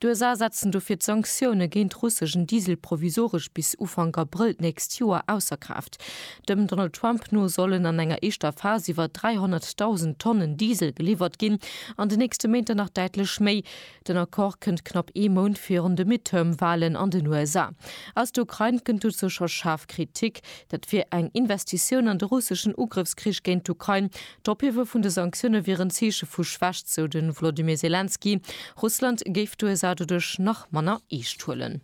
D'USA setzen dofir d'Sanktioune géint russeschen Diesel provisoresch bis Ufank Abrëll d'nächst Joer ausser Kraaft. Dem Donald Trump no sollen an enger éischter Phas iwwer 300.000 Tonnen Diesel geliwwert ginn, an de nächste Méint der nach däitlech méi. Den Accord kënnt knapp ee Mount virun de Midterm-Walen an den USA. Aus der Ukrain kënnt dozou scho schaarf Kritik. Dat wier eng Investitioun an de russeschen Ugrëffskrich géint d'Ukrain, D'Ophiewe vun de Sanktioune wier en Zeeche vu Schwächt, sou de Volodymyr Selenskyj. Russland géif d'USA doduerch nach manner eescht huelen.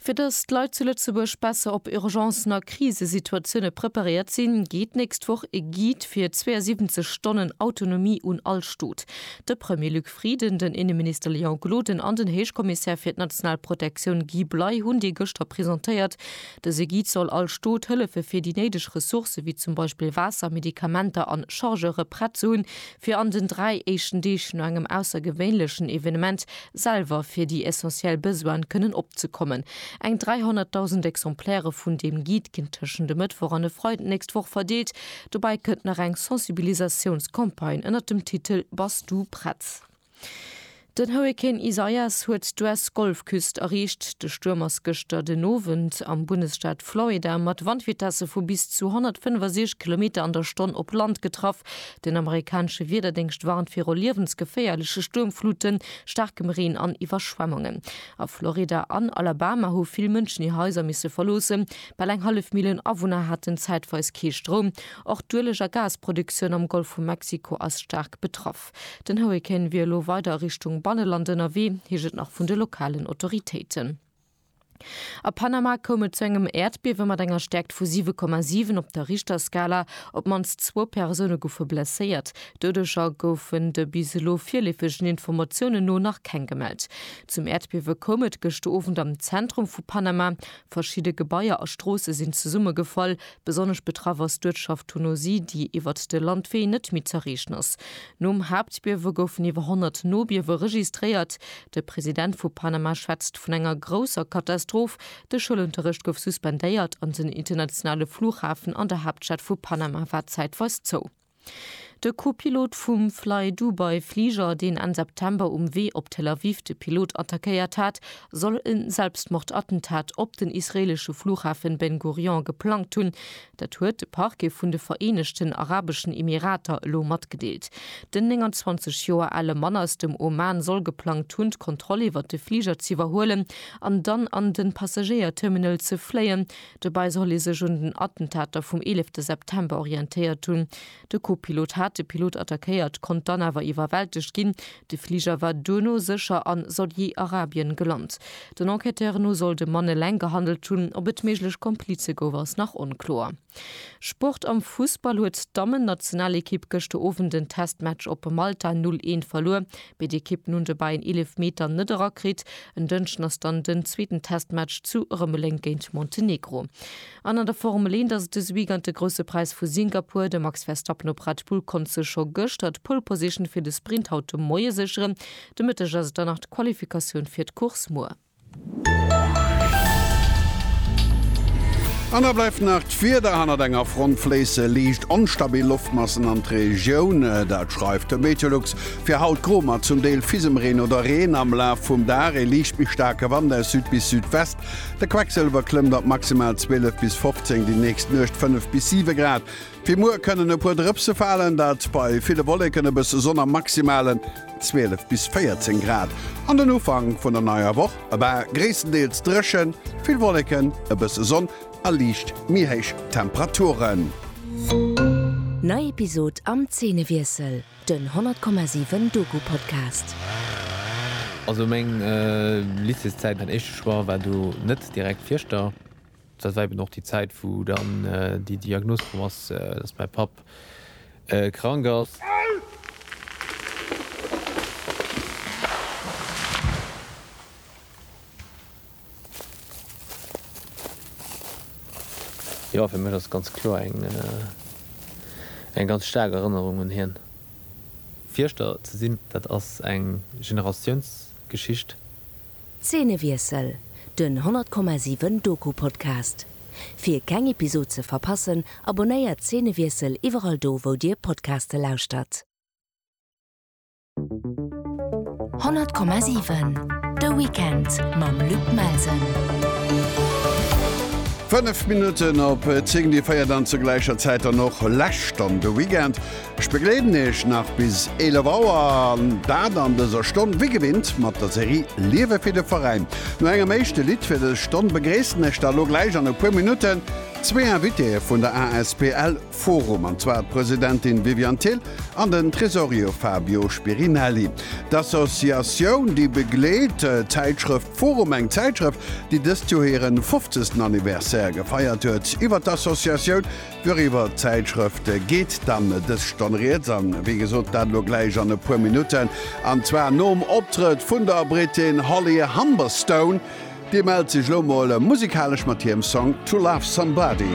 Fir datt d'Leit zu Lëtzebuerg besser op Urgencen a Krisesituatioune preparéiert sinn, geet d'nächst Woch e Guide fir 72 Stonnen Autonomie un all Stot. De Premier Luc Frieden, den Inneminister Léon Gloden an den Héichkommissär fir d'national Protektioun Guy Bley hunn dee gëschter presentéiert. Dëse Guide soll all Stot hëllefe fir déi néideg Ressourcë wéi zum Beispill Waasser, Medikamenter an Chargeure prett ze hunn, fir an den dräi éischten Deeg no engem aussergewéinlechen Evenement selwer fir déi essentiell Besoine kënnen opzekommen. Eng 300.000 Exemplairë vun deem Guide ginn tëschent e Mëttwoch an e Freiden d'nächst Woch verdeelt. Dobäi kënnt nach eng Sensibilisatiounscampagne ënnert dem Titel Bass du prett? Den Hurrikan Isaias huet d'US-Golfküst erreecht. De Stuerm ass gëschter den Owend am Bundesstaat Florida mat Wandvitesse vu bis zu 165 Kilometer an der Stonn op Land getraff. Den amerikanesche Wiederdéngscht warnt viru liewensgeféierleche Stuermfluten, staarkem Reen an Iwwerschwemmunge. A Florida an Alabama hu vill Mënschen hir Haiser misse verloossen. Bal eng hallef Millioun Awunner haten zäitweis kee Stroum. Och d'Ueleg a Gasproduktioun am Golf vu Mexiko ass staark betraff. Kap. Den Hurrikan wier elo weider a Richtung Banneland ënnerwee, heescht et nach vun de lokalen Autoritéiten. A Panama koum et zu engem Äerdbiewe mat enger Stäerkt vu 7,7 op der Richterskala. Op d'mannst zwou Persoune goufe blesséiert. Doudeger goufen de bis elo virleefegen Informatiounen no nach keng gemellt. Zum Äerdbiewe koum et gëschter Owend am Zentrum vu Panama. Verschidde Gebaier a Stroosse sinn zesummegefall. Besonnesch betraff ass d'Uertschaft Thunosi, déi iwwert de Landwee net méi z'erreechen ass. Nom Haaptbiewe goufen iwwer 100 Nobiewe registréiert. De President vu Panama schwätzt vun enger grousser Katastroph. De Schoulunterrecht gouf suspendéiert an den internationale Flughafen an der Haaptstad vu Panama war zäitweis zou. De Co-Pilot vum Flydubai-Fliger, deen Enn September um Wee op Tel Aviv de Pilot attackéiert hat, soll e Selbstmordattentat op den israeelesche Flughafen Ben Gurion geplangt hunn. Dat huet de Parquet vun de Vereenegten Arabeschen Emirater elo matgedeelt. Den 29 Joer ale Mann aus dem Oman soll geplangt hunn, d'Kontroll iwwert de Fliger z'iwwerhuelen an dann an de Passagéierterminal ze fléien, Dobäi soll ee sech un den Attentater vum 11 de September orientéiert hunn. De Co-Pilot hat de Pilot attackéiert, konnt dann awer iwwerwältegt ginn. De Fliger war duerno sécher a Saudi-Arabien gelant. Den Enquêteuren no soll de Mann eleng gehandelt hunn. Ob et méiglech Komplize gouf, ass nach onkloer. Sport Am Fussball huet d'Dammen-Nationalekipp gëschter Owend den Testmatch op Malta 0, 1 verluer. mee d'Ekippen hunn de Ball en Eelefmeter net erakritt. En Dënschden ass dann den zweeten Testmatch zu Rëmeleng géint Montenegro. An an der Formel 1 ass et dëse Weekend de Grousse Präis vu Singapur. De Max Verstappen op Red Bull konnt sech scho gëschter d'Pole Position fir de Sprint haut de Moie sécheren. De Mëtteg ass et dann nach d'Qualifikatioun fir d'Course muer. An da bleift nach d'Wieder, hannert enger Front fléisse liicht onstabil Loftmassen an d'Regioun. Dat schreift de Meteolux fir haut gro mat zum Deel Fisemreen oder Reen am Laf vum Dag. Ee liicht méi staarke Wand aus Süd bis Südwest. De Quecksëlwer klëmmt op maximal 12 bis 15, déi nächst Nuecht 5 bis 7 Grad. Fir muer kënnen e puer Drëpse falen, dat bei ville Wolleken, e bësse Sonn a maximale 12 bis 14 Grad. An den Ufank vun der neier Woch, e war gréisstendeels dréchen, vill Wolleken, e bësse Sonn a liicht méi héich Temperaturen. Nei Episod am Zeenewiessel, den 100,7 Doku-Podcast. Also meng Lycéeszäit, mäin éischte Choix war do net direkt Fieschter. Dat war eben och déi Zäit, wou dann déi Diagnos komm ass, dass mäi Papp krank ass. Jo, fir mech ass et ganz kloer eng ganz staark Erënnerung un hien. Fierschter ze sinn, dat ass eng Generatiounsgeschicht. Zeenewiessel, den 100,7 Doku-Podcast. Fir keng Episod ze verpassen, abonnéiert Zeenewiessel iwwerall do wou dir Podcaste lauschtert. 100,7 De Weekend mam Luc Melsen. 5 Minutten op 10, Dir féiert an zu gläicher Zäit dann och lech dann de Weekend. Ech begleeden Iech nach bis 11 Auer, an dat an dëser Stonn wéi gewinnt mat der Serie Liewe fir de Veräin. No engem éischte Lidd fir dës Stonn begréissen ech da lo gläich an e puer Minutten zwee Invitéeë vun der asbl Forum, an zwar d'Presidentin Viviane Thill an den Tresorier Fabio Spirinelli. D'Associatioun déi begleet d'Zäitschrëft Forum, eng Zäitschrëft déi dëst Joer hiren 50. Anniversaire gefeiert huet, iwwer d'Associatioun Doriwwer d'Zäitschrëft geet dann dës Stonn rieds, a wéi gesot, dat elo gläich an e puer Minutten, an zwar nom Optrëtt vun der Brittin Holly Humberstone. Déi mellt sech elo mol musikalesch mat hirem Song To Love Somebody.